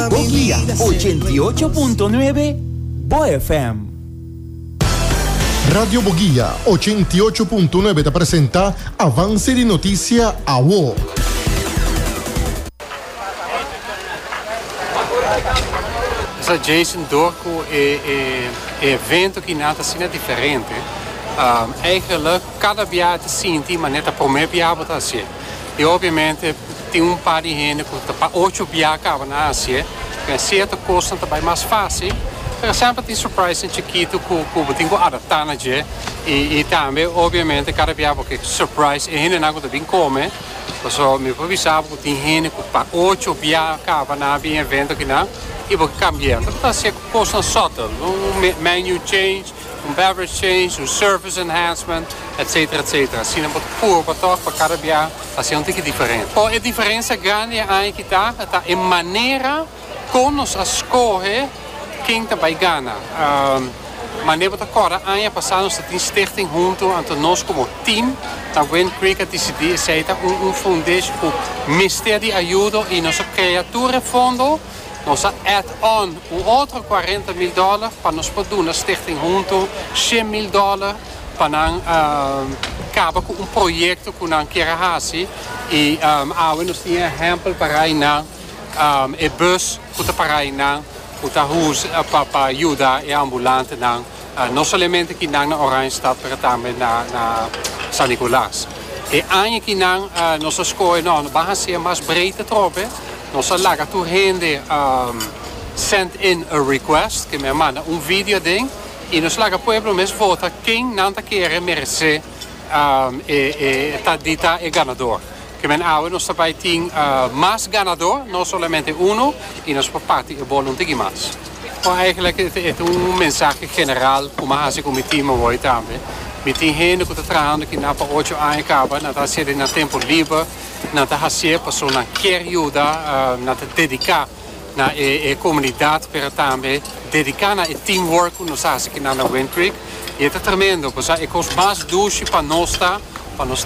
Bo guia ochenta i ocho punto nuebe Bo FM. Radio Bo Guia ochenta i ocho punto nuebe ta presenta Avance di Noticia Awo. Sa Jason door cu e evento ki nan ta asina diferente, eigenlijk cada bia ta sinti manera ta prome bia bo ta hacié. Y obviamente. Tin un par di hende cu ta pa ocho bia caba na Asie, den cierto cosnan ta bay mas facil. Por ejemplo tin surprisenan chiquito cu cu bo tin cu adapta na dje y y tambe obviamente cada bia bo ke surprise e hendenan cu ta bin come. Pasobra mi por bisa bo cu tin hende cu pa ocho bia caba na bin evento akinan y bo ke cambianan. Ta hasier cosnan subtle, un menu change. Un beverage change, un service enhancement, etc. Etc. Asina bo ta puru pa tok pa kada bia ta hasi un tiki diferente. Por e diferensia grandi e aña kita ta e manera kon nos a skohe ken ta bai gana. Mane bo ta korda aña pasa nos ta tin stichting huntu anto nos komo team na Wind Creek a disidí esei ta un un fondesh ku mester di ayudo i nos a krea tur e fondo. Nos a add on un otro cuarenta mil dollar pa nos por duna Stichting Hunto shen mil dollar pa nan caba cu un proyecto cu nan kier a haci y awe nos tin e ehempel parai nan, e bus cu ta parai nan cu ta pa yuda e ambulantenan. No solamente ki nan na Oranjestad pero tambe na San Nicolas. E aña ki nan nos a skohe no no ban haci'e mas breed atrobe, nos a laga tur hende send in a request, ke men a manda un video den y nos laga pueblo mes vota ken nan ta kere merece. e ta di ta e ganador. Kimen awe nos ta bai tin mas ganador, no solamente uno, y nos por parti e bol un tiki mas. Bo eigenlijk e ta un mensahe general cu mi a haci cu mi team awoy tambe. Mi tin hende cu ta trahando kina pa ocho aña caba, nan ta haci'e den nan tempo liber, nan ta haci'e pasobra nan kier yuda, nan ta dedica. na e e comunidad pero tambe dedica na e team work cu nos haci aquí nan na Wind Creek y e ta tremendo, pasobra e cos mas dushi pa nos ta pa nos.